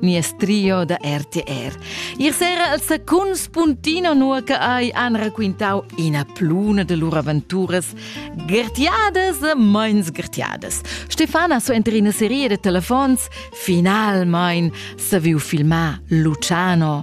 nies trio da RTR. Ier sera al secund spuntino nur che hai han raquintau ina pluna de lur aventuras gertiadas e meins gertiadas. Stefana so enter ina serie de telefons finalmein saviu filmar Luciano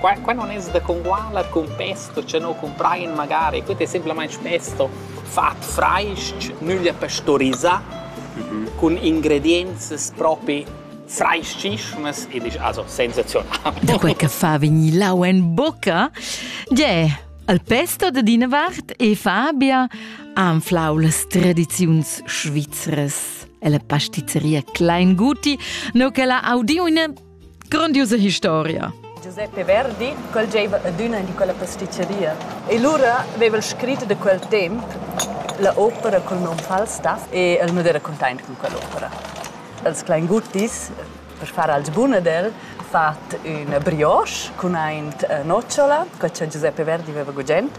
Qua, qua non es da congualer cun pesto, cha no cumprain magari, que es semplamaing pesto fat frais-ch, nüglia pastorisà, cun ingredienzas propi frais-chischunas e disch also sensazional. Da quel che fa vegnir lau en bocca, Gie, al pesto da dina vart e Fabia anflau las tradiziuns svizras. E la pastizzeria Kleinguti, no che l'ha audiu in Grondiusa historia. Giuseppe Verdi quel gieva adüna in quella pasticceria e lura aveva el scrit da quel temp la opera col nom Falstaff e el non era content con quell'opera. Els Kleinguttis, per far als buna del, fat una brioche con ein nocciola, quella che Giuseppe Verdi aveva gugent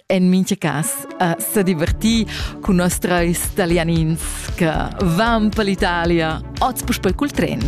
en mincha cas a sa divertir cun nos trais talianins che van per l'Italia oz puspei cul tren.